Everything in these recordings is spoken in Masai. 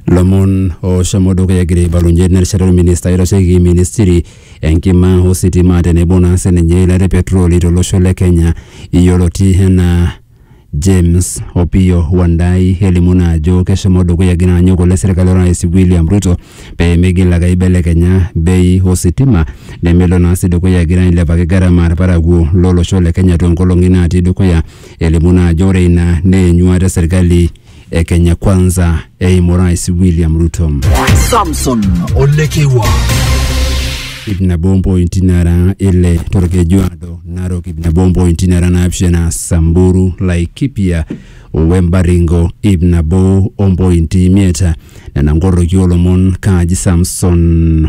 Lomon oshomo dukuya egira aibalunye nerishata orminista oitasheki ministiri enkima ositima tenebo naa sininye ilo le petroli tolosho le Kenya yioloti enaa James Opiyo Wandayi elimu naa ajo keshomo dukuya egira anyok oleng serkali orais William Ruto pee migil ake aibelekenya bei ositima nemelo naa sii dukuya egira ailepaki gharama irparakuo lolosho le Kenya toonkolong'i natii dukuya elimu naa ajo ore ina naa enyuata e serkali e Kenya Kwanza eimu Rais William Ruto. Samson Olekewa. Ip nabo mpointi nara ile torkeju ado Narok ip nabo mpointi nara naapishana Samburu Laikipia Wembaringo ip nabo ompointi imiet nena nkoroki olomon kaaji Samson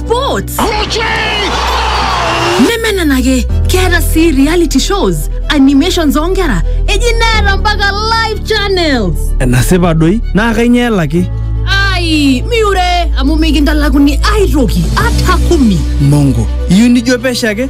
sports nemenenake keeta sii reality shows animations oonkera eji neeta mpaka live channels enasipa doi naa kainyoo elaki ai miure amu mikintalakuni aitoki ata kumi mongo iyieu nijo pesho ake